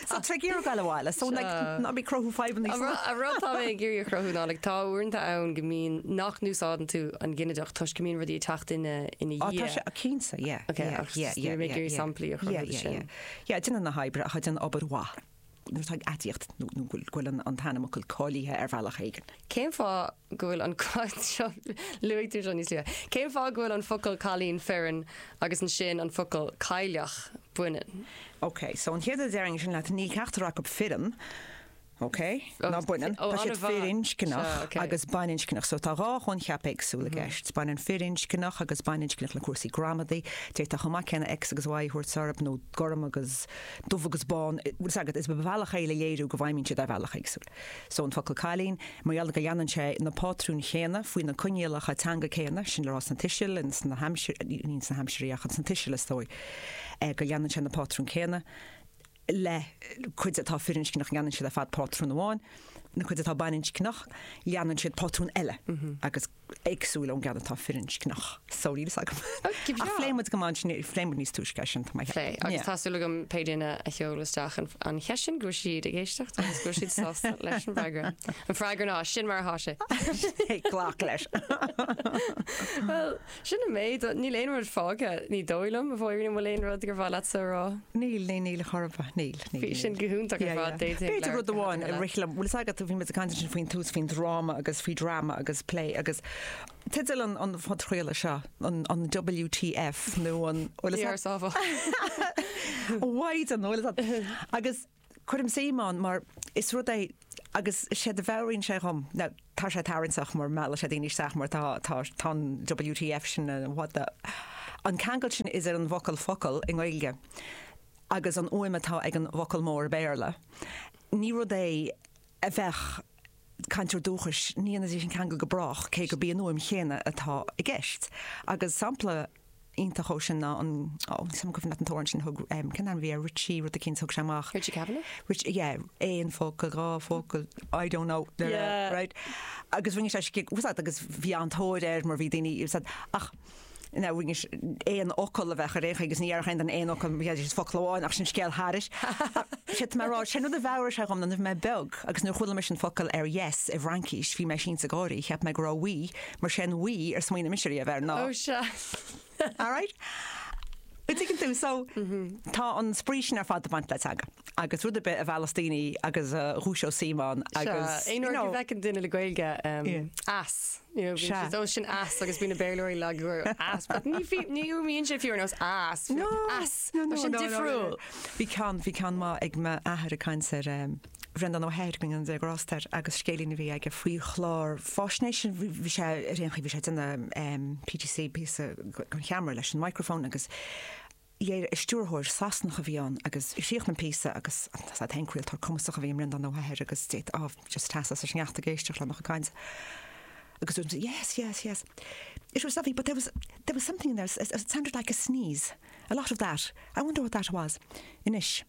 So tre gearradh gaile bhaile, so like ná bí cruthú fadhbanna san áit. An rud tá mé ag iarraidh a chruthú ná like tá uaireanta ann go mbíonn nach n-úsáideann tú an ginideach toisc go mbíonn rudaí ag teacht ina ina dhiaidh. Á tá sé, cinnte, yeah, Ok, yeah, ach yeah, yeah, níl mé ag yeah, iarraidh yeah, samplaí a chruthú yeah, de yeah, sin. yeah, yeah, déanamh na hoibre ach déanamh obair mhaith nuair atá aidiacht nó nó go bhfuil go bhfuil an an t-ainmfhocal cáilithe ar bhealach éigin. Cén fáth go bhfuil an ceann seo luaigh tú seo níos luaithe cén fáth go bhfuil an focal cailín fireann agus ansin an focal cailleach baineann. OK, so an chéad rud a déarfainnse leat, níl ceachtar acu fireann, OK, ná baineann, tá siad firinscneach agus baininscneach, so tá dhá choincheap éagsúil i gceist, baineann firinscneach agus baininscneach le cúrsaí gramadaí, d'fhéadfá chomh maith céanna X agus Y a thabhairt orthu, nó gorm agus dubh agus bán, bhfuil 'fhios agat, is bealach é le léiriú go bhfeidhmíonn siad ar bhealach éagsúil. So an focal cailín, mar gheall go leanann sé na pátrúin chéanna faoi na coinníollacha teanga céanna, sin le rá sna tuisil, ins na haimsirí, ní sna haimsirí ach ins na tuisil is dócha, go leanann sé na pátrúin céanna le cuid atá firinscneach leanann siad ar fad pátrún amháin, na cuid atá baininscneach leanann siad pátrún eile agus. éagsúil ón gceann atá firinscneach so níl fhios agam ar phléigh muid go maith ansin, phléigh muid níos túisce é sin táimid ag plé agus tá súil agam pé duine a sheol isteach an cheist sin go raibh siad ag éisteacht agus go raibh siad sásta leis an bhfreagra. An freagra ná sin mar atá sé. Glac leis. Well sin an méid níl aon rud fágtha ní dóigh liom an bhfuil aon rud gur mhaith leatsa a rá. Níl ní níl a chorpa níl. Bhí sin go hiontach ar fad, d'fhéadfadh B'fhéidir leabhar rud de amháin Shadhana a rith liom. Bhfuil fhios agat, bhí muid ag caint ansin faoin tús, faoin dráma agus faoi drama agus plé agus teideal an an phodchraolta seo, an an WTF nó an bhfuil fhios ag Dearsábhadh. Why the bhfuil fhios ag agus cuirim suim ann mar is rud é agus séard a mheabhraíonn sé dhom, ná tá sé tarraingteach mar mheallann sé daoine isteach mar tá tá tá an WTF sin, an what the an ceangal sin is ar an bhfocal focal i nGaeilge agus an fhuaim atá ag an bhfocal mór i mBéarla, ní rud é a bheadh cainteoir dúchais, ní dhéanfaidís an ceangal go brách, cé gurb í an fhuaim chéanna atá i gceist. Agus sampla iontach dhó sin ná an, ó, níl a fhios 'am an cuimhneach leat an t-amhrán sin a thug, cén t-ainm a bhí air, Richie rud eicínt a thug sé amach. Richie Kavanagh? Richie, yeah, aon focal, dhá focal, I don't know, yeah, right. Agus rinne sé skit, tá a fhios agat, agus bhí an-tóir air mar bhí daoine, tá a fhios agat, ach, ina bhfuighidís aon fhocal a bheadh ar aon chaoi agus ní dhéarfadh aon duine aon fhocal, bheadh aon fhocal amháin ach sin scéal thairis. Séard atá mé a rá, sin rud a mheabhraigh sé dhom nuair a bhí mé beag agus nuair a chuala mise an focal ar yes i bhFraincís bhí mé sínte ag gáirí, cheap mé go raibh oui mar sé an oui ar smaoinigh mise riamh air ná. Oh sea. Alright. An dtuigeann tú? So tá an spraoi sin ar fad ag baint le teanga agus rud ar bith a mheallas daoine agus a dhúiseos suim ann agus, you know. Sea, aon uair a bhfeiceann duine le Gaeilge, em, as. Níor bhíonn siad ó sin as agus bhí na Béarlóirí lag go raibh as. But ní bhí, níor bhíonn sé fiú ar nós as, bhí as, tá sé difriúil. Bhí ceann, bhí ceann maith ag m'athair ag caint ar Bhreandán Ó hEithir, go ndéana Dia grásta air, agus scéilín a bhí aige faoi chlár fáisnéise. Bhí sé ar aon chaoi, bhí sé ag déanamh PTC, píosa chun ceamara leis an microphone, agus Dhera stiúrthóir Sasanach a bhí ann agus chríochnaigh an píosa agus tá a fhios agat an craoltóir cumasach a bhí i mBreandán Ó hEithir agus d'fhéadfá, ámh, just seasamh sa sneachta ag éisteacht lena chuid cainte agus dúirt sé, Yes, yes, yes. It was lovely but there was, there was something in there, it sounded like a sneeze, a lot of that, I wonder what that was. Anois.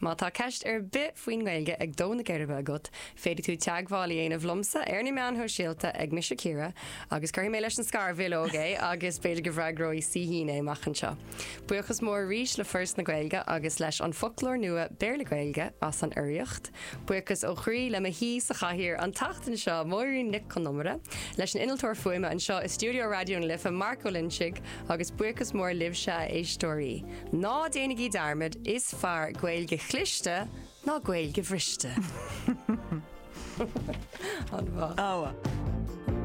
Má tá ceist ar bith faoin nGaeilge ag dó na geirbe agat, féadfaidh tú teagmháil a dhéanamh liomsa ar na meáin shóisialta ag Mise Ciara agus cuirfidh mé leis an scarbhileog é agus b'fhéidir go bhfreagróidh Saoithín é amach anseo. Buíochas mór arís le Foras na Gaeilge agus leis An Foclóir Nua Béarla-Gaeilge as an urraíocht. Buíochas ó chroí le mo haoi sa chathaoir an tseachtain seo, Máirín Nic Con Iomaire, leis an innealtóir fuaime anseo i stiúideo Raidió na Life, Mark Ó Loinsigh, agus buíochas mór libhse, a éisteoirí. Ná déanaigí dearmad, is fearr Gaeilge chliste ná Gaeilge bhriste. An-mhaith.